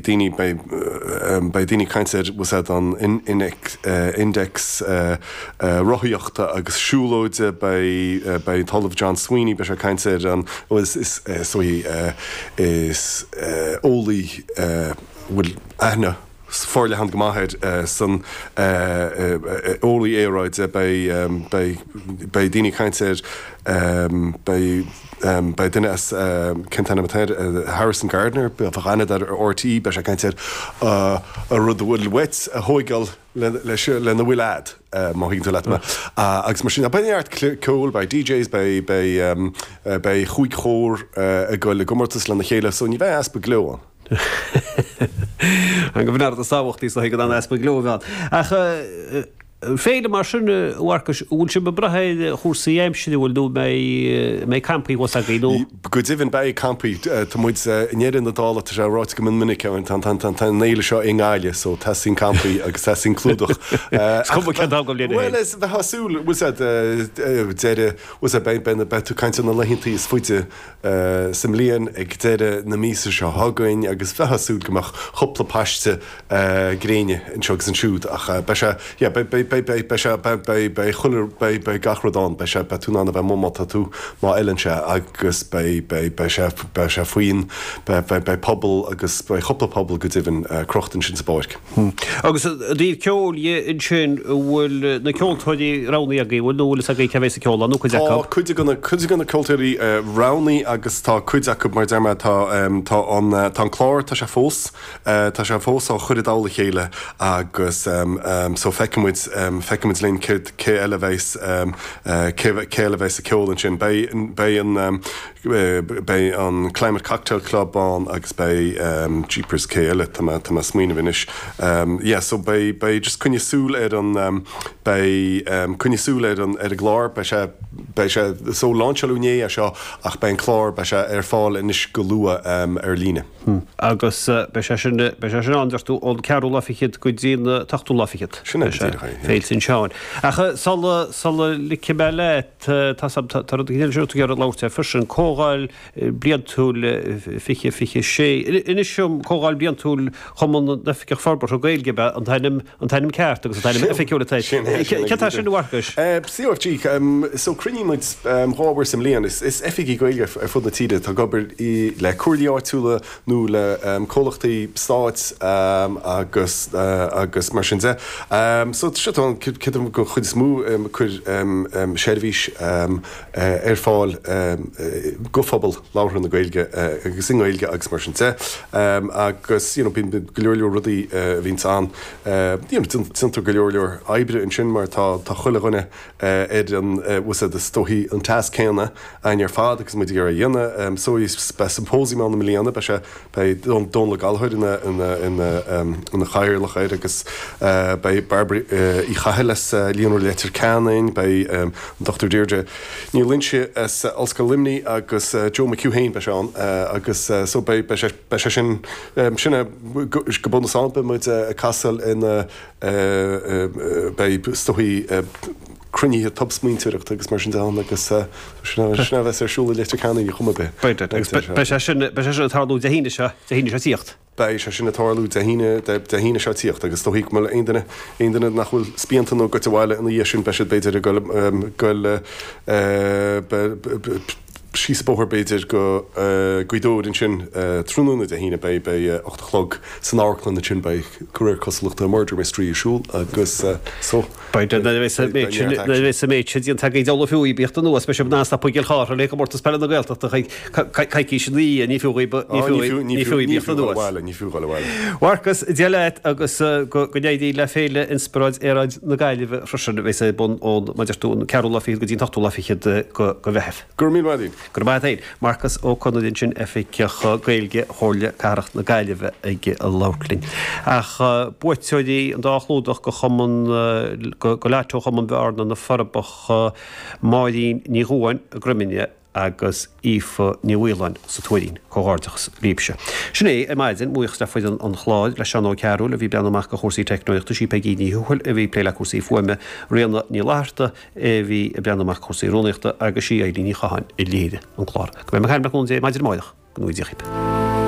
daoine, beidh daoine ag caint ar úsáid an index rothaíochta agus siúlóide, beidh an tOllamh John Sweeney, beidh sé ag caint ar an, is dóigh, is eolaí a bhfuil aithne fhorleathan go maith airsean, eolaí aeráide, beidh daoine ag caint ar, beidh. Beidh duine as, cén t-ainm atá air, Harrison Gardner, bheadh aithne air as RTÉ, beidh sé ag caint ar an rud a bhfuil ag teastáil uait a thóigeáil lena bhfuil agat, má thuigeann tú leat mé. Agus mar sin, beidh neart ceoil, beidh DJs, beidh chúig chór ag goil i gcomórtas lena chéile, so ní bheidh easpa gleo ann. Is maith go bhfuil, tá sé tábhachtach gan aon easpa gleo a bheith ann. Ach. féile mar sin, a Mharcais, an bhfuil sibh ag brath ar chúrsaí aimsire, bhfuil, nó an mbeidh campaí thuas agaibh, nó? Go deimhin beidh campaí, tá muid, i ndeireadh na dála tá sé ráite go mion minic, tá an fhéile seo i nGaillimh so teastaíonn campaí agus teastaíonn clúdach. Is cuma cén t-am den bhliain é. Bhuel is a bheith ag súil, bhuel is ea, deireadh, bhuel is ea beidh tú ag caint ar na laethanta is faide, sa mbliain ag deireadh na míosa seo chugainn agus bheifeá ag súil go mbeadh cúpla paiste gréine anseo agus ansiúd ach beidh sé, yeah, beidh, beidh, beidh, beidh, beidh sé, beidh, beidh, beidh chuile, beidh, beidh gach rud ann, beidh sé, beidh tú in ann a bheith amuigh má tá tú, má fheileann sé agus beidh, beidh, beidh sé, beidh sé faoin, beidh, beidh, beidh puball agus beidh cúpla puball go deimhin crochta ansin sa bpáirc. Hmm. Agus i dtaobh ceoil dhe ansin, an bhfuil na ceoltóirí roghnaithe agaibh, an bhfuil, nó an bhfuil fhios agaibh cé a bheidh ag casadh ceoil ann, nó cuid acu? Tá cuid de na, cuid de na ceoltóirí roghnaithe agus tá cuid acu, mar a deir mé, tá ehm, tá an, tá an clár, tá sé fós, tá sé fós á chur i dtoll a chéile agus ehm, ehm so feicfidh muid, feicfidh muid linn céard, cé eile a bheidh, cé eile a bheidh ag casadh ceoil ansin. Beidh, beidh an. Beidh an Climate Cocktail Club ann agus beidh jeepers cé eile tá mé ag smaoineamh anois yeah so beidh beidh just coinnigh súil ar an beidh coinnigh súil ar an ar an gclár beidh sé beidh sé so lainseáladh inné é seo ach beidh an clár beidh sé ar fáil anois go luath ar líne. Agus beidh sé sin beidh sé sin ann deir tú ón ceathrú lá fichead go dtí an t-ochtú lá fichead? Sin é go díreach é yeah. Féile San Seáin. Ach sula sula ligfidh mé leat. Tá rud éigin eile a bhfuil tú ag iarraidh labhairt air freisin, Comhdháil Bhliantúil 2026. Inis dom, Comhdháil Bhliantúil Chumann na nOifigeach Forbartha Gaeilge ab in é an t-ainm ceart agus an t-ainm oifigiúil atá air. Céard atá ar siúl a Mharcais? COFG, So cruinníonn muid dhá uair sa mbliain. Is oifigigh Gaeilge ar fud na tíre atá ag obair le Comhairlí áitiúla nó le comhlachtaí stáit agus agus mar sin de so tá siad ann creidim go chuid is mó cur seirbhís ar fáil go phobal labhartha na Gaeilge agus i nGaeilge agus mar sin de agus you know bíonn go leor leor rudaí a bhíonn ann you know déantar go leor leor oibre ansin mar tá tá chuile dhuine ar an usaid is dóichí an tasc céanna againn ar fad agus muid ag iarraidh a dhéanamh. So beidh symposium ann i mbliana beidh sé beidh Dónall Ó Gallchóir ina ina ina ina chathaoirleach air agus beidh Bairbre Uí Chathail as Líonra Leitir Ceanainn beidh an Dr. Deirdre Ní Loingsigh as Ollscoil Luimní agus Joe McHugh féin beidh sé ann agus so beidh beidh sé beidh sé sin sin é go bunúsach beidh muid ag castáil ina beidh is dóichí cruinnithe tobsmaointeoireachta agus mar sin de ann agus sin a bheas ar siúl i Leitir Ceanainn ar chuma ar bith. Beidh sé sin ag tarlú Dé hAoine seo tíocht agus is dóichí go mbeidh aon duine aon duine nach bhfuil spíonta nó goite abhaile ina dhiaidh sin beidh siad b'fhéidir ag goil ag goil síos an bóthar b'fhéidir go Gaoth Dobhair ansin tráthnóna Dé hAoine beidh beidh ocht a chlog san amharclann ansin beidh go réir cosúlachta murder mystery ar siúl agus so Beidh beidh nuair a bheidh beidh beidh neart nuair a action. bheidh méid sin déanta agaibh ar ndóigh ní fiú dhaoibh tíocht anuas féadfaidh sibh stopadh i gCill Chartha le Comórtas Peile na Gaeltachta coicís ina dhiaidh ní fiú ní fiú ní fiú dhaoibh tíocht anuas. Dul abhaile. Mharcas, Dia leat agus go n-éirí le Féile Inspioráid Aeráid na Gaillimhe freisin a bhéas ar bun ón Maidir tú an ceathrú lá fichead go dtí an hochtú lá fichead go Mheitheamh. Go raibh míle maith agat. Go raibh maith agat. Marcas Ó Conaire ansin, Oifigeach Gaeilge Chomhairle Cathrach na Gaillimhe ag labhairt linn. Ach buaiteoirí an dá chlúdach go Chumann go Lotto Chumann Bhearna na Forbacha Máirín Ní Dhubháin, Groiminne, agus Aoife Ní Mhaoláin sa Tuairín. Comhghairdeachas libhse. Sin é, ar maidin, mo bhuíochas le foireann an chláir, le Seán Ó Cearúil a bhí ag breathnú amach ar chúrsaí teicneolaíochta, sí Peigí Ní Thuathail a bhí ag plé le cúrsaí fuaime, Ríona Ní Fhlatharta a bhí ag breathnú amach ar chúrsaí rúnaíochta agus sí Eilín Ní Chatháin a léirigh an clár. Go mbeidh muid ag caint le cúnamh Dé maidin amárach. Go ngnóthaí Dia dhaoibh.